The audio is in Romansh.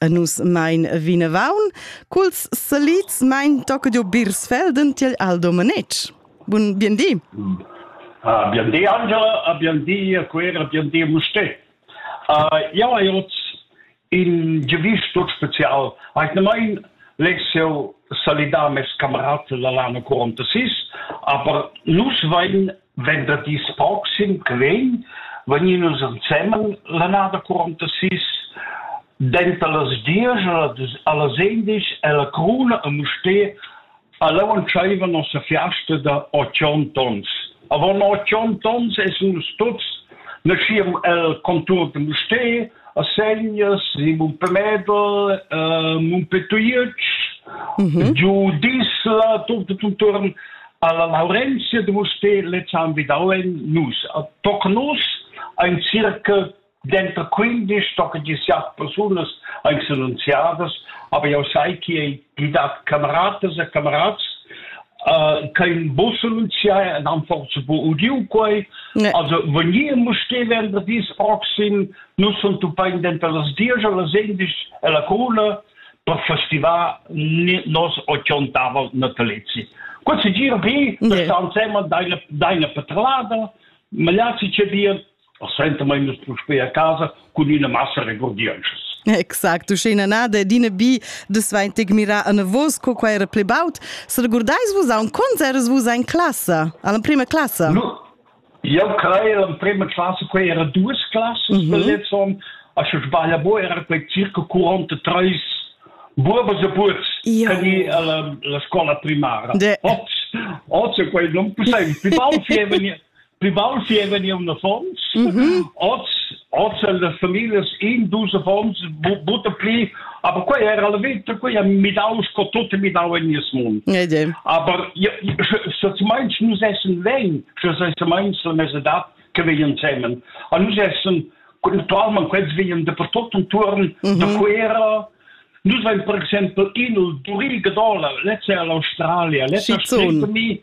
e nus mein vinavon culs salids mein tocca giu Birsfelden tiel Aldo Manetsch. Bun biendì. Ah, biendì Angela, a biendì a Quera, biendì Musté. Uh, ja, hai ot in giuvisch tut spezial. Hai nemain Lexio salidà mes camerad la l'anno 46, aber nus vein venderdis proxim che vegn vegnin nus ensemen l'annada quarantasis denter las diesch allas endisch ella Cruna a Mustér all'au entscheiva nossa fiasta da otg tons. Avon otg tons essen nus tuts naschiam el contur de Mustér a Segnas, in Mumpemedel, uh, Mumpetuiec, mm -hmm. giu Disla, tutto tutto alla Laurentia de Mustér le han vidau en nus. Toc nus ein circa dentro 15 toc 17 persunas ein annunziadas, aber jau sai che ei gidat cameratas e camerats uh, che in bus annunziai en han forse bu udiu quei, ne. also vegni musté venderdis proxim, nus sun tupain dentro las 10 e las 11 e la cula, per festivar nos 80 natalezi. Quel se gira pi, yeah. sta insema daina, daina petrolada, ma là si c'è dir, senta mai nus prospei a casa cun una massa regordienschas. Exact, uschena nada dina bi de sveintig mira an vos co qua era ple baut. Se regordais vos a un concerts vos in classe, alla prima classe? No, Jau crai l'emprima classa quai era duas classas da lezzon. A sche sbaglia bo era quei circa 43 buobas e buots tani alla la scuola primaria. Oz oz è quei non possibile. Più baul fieva ni più baul fieva ni un affons. Oz Hoz el las familias in dus affons butta pli, aber quei era la vita, quei ha midau sco tot è midau in nies mund. Ede. Aber se zu meinst nus essen wen, se sei zu meinst la mesedat che veien zusammen. A nus essen Naturalment, quels veien dappertut intorn, mhm. da Quera, Nous vain per exemple in il Turilga Dola, lezza è l'Australia, lezza spritta mi